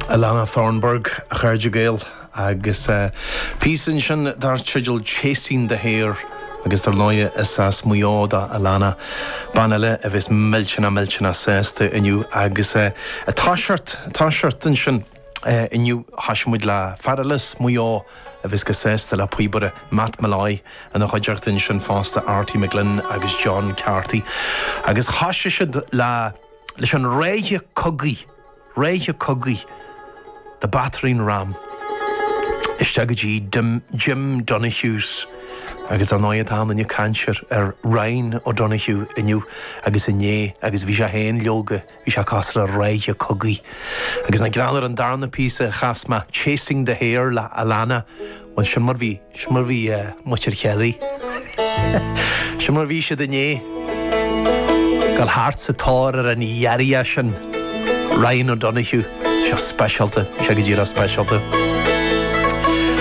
Alana Thornburgh, a chairde Gael, agus a píosa ansin dar teideal 'Chasing the Hare', agus dar ndóigh is as Maigh Eo do Alana, bean eile a bheas millteanach millteanach sásta inniu agus tá sásta, tá sásta ansin inniu thosaigh muid le fear eile as Maigh Eo a bheas go sásta, an píobaire Matt Molloy ina chuideachta ansin fosta, Artie McGlynn agus John Carty agus thosaigh siad le. leis an reithe cogaidh, reithe cogaidh, the battering ram, isteach go dtí Jim Donohue's agus ar ndóigh tá an-chaint ar Ryan O'Donoghue inniu agus inné agus bhí sé féin leoga, bhí sé cosúil le reithe cogaidh. Agus nach greannmhar an darna píosa a chas mé, Chasing the Hare le Alana. Bhuel, seo mar bhí. Seo mar bhí muintir Chiarraí. Seo mar bhí siad inné. Ag dul thart sa tóir ar an ghiorria sin Ryan O'Donoghue. Bhí sé speisialta. Bhí sé go díreach speisialta.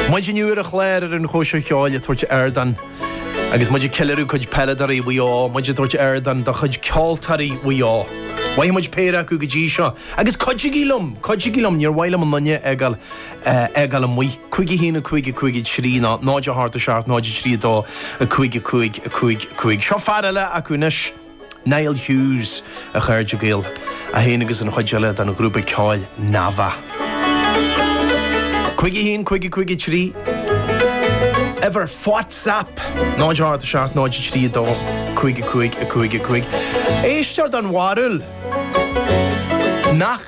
Muid inniu ar an chlár ar an Chóisir Cheoil ag tabhairt ardán agus muid ag ceiliúradh cuid peileadóirí Mhaigh Eo, muid ag tabhairt ardán do chuid ceoltóirí Mhaigh Eo. Chaith muid péire acu go dtí seo. Agus cuidigí liom! Cuidigí liom! Níor mhaith liom aon duine a fhágáil a fhágáil amuigh. Cúig a haon, a cúig, a cúig a trí, ná náid a hocht, a seacht, náid a trí, a dó, a cúig, a cúig, a cúig, a cúig. Seo fear eile acu anois, Niall Hughes, a chairde Gael, é féin agus an chuid eile den ghrúpa ceoil Navá. Cúig a haon, cúig a cúig a trí, uimhir WhatsApp, náid a hocht, a seacht, náid a trí, a dó, cúig, a cúig, a cúig, a cúig. Éisteoir don bharúil nach.